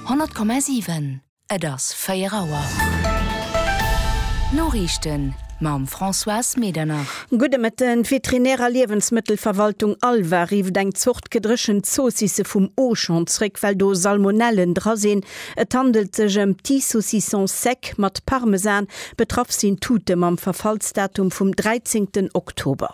100,7, Et ass 4 Auer. D'Noriichten mam Françoise Medernach. Gudde Mëtten. D'Veterinär a Liewensmëttelverwaltung Alva rifft eng Zort gedréchent Zoossisse vum Auchan zréck, well do Salmonellen dra sinn. Et handelt sech ëm Petit Saucisson Sec mat Parmesan. Betraff sinn Tute mam Verfallsdatum vum 13 Oktober.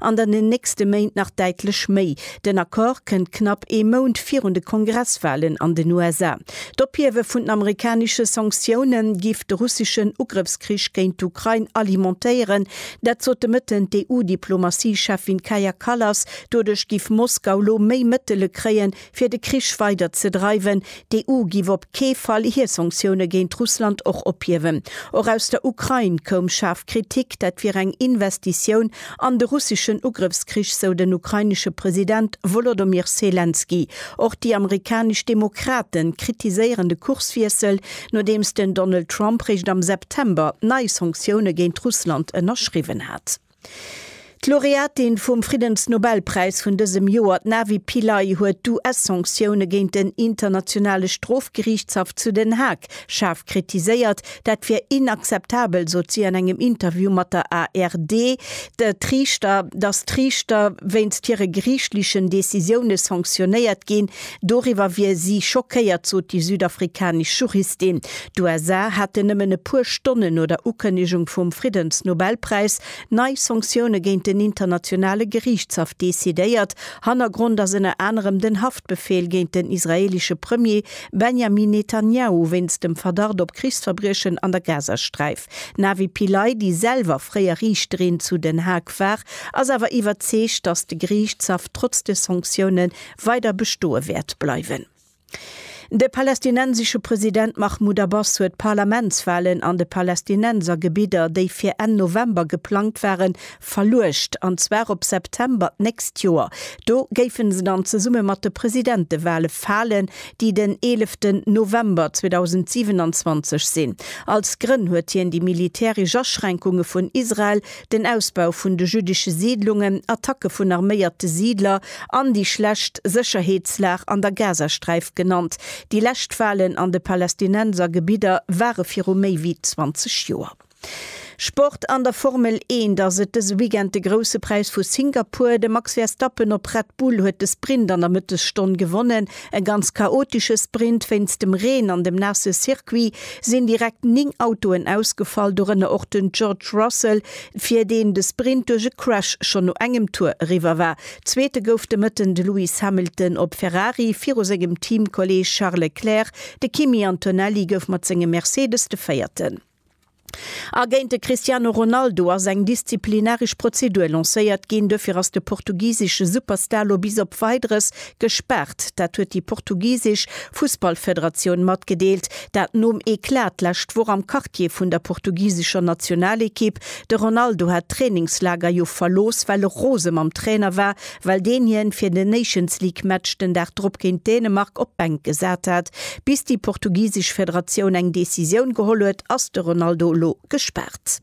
an an den nächste Méint nach däitlech méi. Den Accord kënnt knapp ee Mount virun de Kongresswalen an den USA. D'Ophiewe vun den amerikanesche Sanktioune giff de russeschen Ugrëffskrich géint d'Ukrain alimentéieren. Dat sot de Mëtten d'EU-Diplomatie-Cheffin Kaja Kallas. Doduerch giff Moskau lo méi Mëttele kréien, fir de Krich weider ze dreiwen, d'EU giff op kee Fall hir Sanktioune géint Russland och ophiewen. Och aus der Ukrain koum schaarf Kritik, dat wier eng Investitioun an de russeschen Ugrëffskrich, sou den ukrainesche President Wolodomyr Selenskyj. Och déi amerikanesch Demokrate kritiséieren de Kurswiessel, nodeems den Donald Trump réischt am September nei Sanktioune géint Russland ënnerschriwwen hat. D'Laureatin vum Friddensnobelpräis vun dësem Joer, d'Navi Pillay, huet d'US-Sanktioune géint den Internationale Strofgeriichtshaff zu Den Haag schaarf kritiséiert. Dat wier inakzeptabel, sot si an engem Interview mat der ARD. D'Riichter, datt d'Riichter wéinst hire geriichtlechen Decisioune sanktionéiert ginn, Doriwwer wier si schockéiert, sot déi südafrikanesch Juristin. D'USA hätten nëmmen e puer Stonnen no der Ukënnegung vum Friddensnobelpräis nei Sanktioune géint den Internationale Geriichtshaff decidéiert. Hannergrond ass ënner anerem den Haftbefeel géint den israeelesche Premier Benjamin Netanjahu wéinst dem Verdacht op Krichsverbriechen an der Gazasträif. D'Navi Pillay, déi selwer fréier Riichterin zu Den Haag war, ass awer iwwerzeegt, datt de Geriichtshaff trotz de Sanktioune weider bestoe wäert bleiwen. De palästinensesche President Mahmoud Abbas huet d'Parlamentswalen an de Palästinensergebidder, déi fir Enn November geplangt waren, verluecht, an zwar op September d'nächst Joer. Do géife se dann zesumme mat de Presidentewale falen, déi den 11 November 2027 sinn. Als Grënn huet hien déi militäresch Aschränkunge vun Israel Den Ausbau vun de jüddesche Siidlungen, Attacke vun arméierte Siidler an déi schlecht Sécherheetslag an der Gazasträif genannt. Déi lescht Walen an de Palästinenser Gebidder ware viru méi wéi 20 Joer. Sport An der Formel Eent ass et dëse Weekend de Grousse Präis vu Singapur. De Max Verstappen op Red Bull huet de Sprint an der Mëttesstonn gewonnen. E ganz chaotesche Sprint wéinst dem Reen an dem naasse Circuit sinn direkt 9 Autoen ausgefall, dorënner och den George Russell, fir deen de Sprint duerch e Crash schonn no engem Tour eriwwer war. Zweete gouf de Mëtten de Lewis Hamilton op Ferrari viru sengem Teamkolleeg Charles Leclerc. De Kimi Antonelli gouf mat sengem Mercedes de Véierten. A géint de Cristiano Ronaldo ass eng disziplinaresch Prozedur lancéiert ginn. Duerfir ass de portugisesche Superstar lo bis op Weideres gespaart. Dat huet déi portugisesch Fussballfederatioun matgedeelt. Dat nom Eclat d'lescht Woch am Quartier vun der portugisescher Nationalekipp. De Ronaldo hat d'Trainingslager jo verlooss, well e rose mam Trainer war, well deen hien fir den Nations League Match den Dag drop géint Dänemark op d'Bänk gesat hat. Bis déi portugisesch Federatioun eng Decisioun geholl huet, ass de Ronaldo elo gespaart.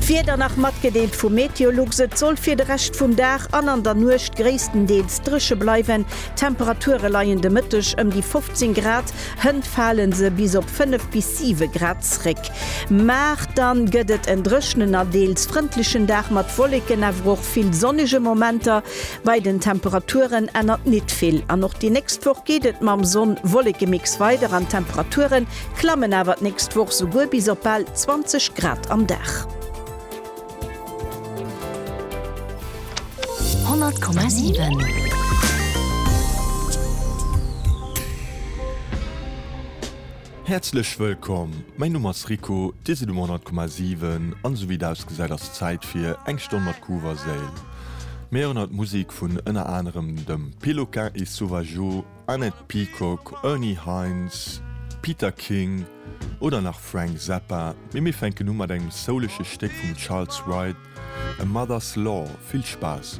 D'Wieder nach matgedeelt vu Meteolux, Et soll fir de Rescht vum Dag an an der Nuecht gréisstendeels dréche bleiwen. D'Temperature leien de Mëtteg ëm déi 15 Grad Hënt falen se bis op 5 bis 7 Grad zréck. Mar dann gëtt et en dréchnen a deels frëndlechen Dag mat Wolleken awer och vill sonnege Momenter. Bei den Temperaturen ännert nit vill an och déi nächst Woch geet et mam Sonn-Wolleke-Mix weider an d'Temperaturen klammen awer d'nächst Woch souguer bis op bal 20 Grad am Dag. Honnert Komma sieben. Häerzlech wëllkomm, mäin Numm ass Rico, Dir sidd um Honnert Komma sieben an esou wéi et ausgesäit ass Zäit fir eng Stonn mat Groove a Séil. Mir héieren haut Musik vun ënner anerem dem Péloquin et Sauvageau, Annette Peacock, Ernie Heinz, Peter King oder nach Frank Zappa, mee mir fänken u mat engem souleche Stéck vum Charles Wright, A Mother's Lore. Vill Spaass!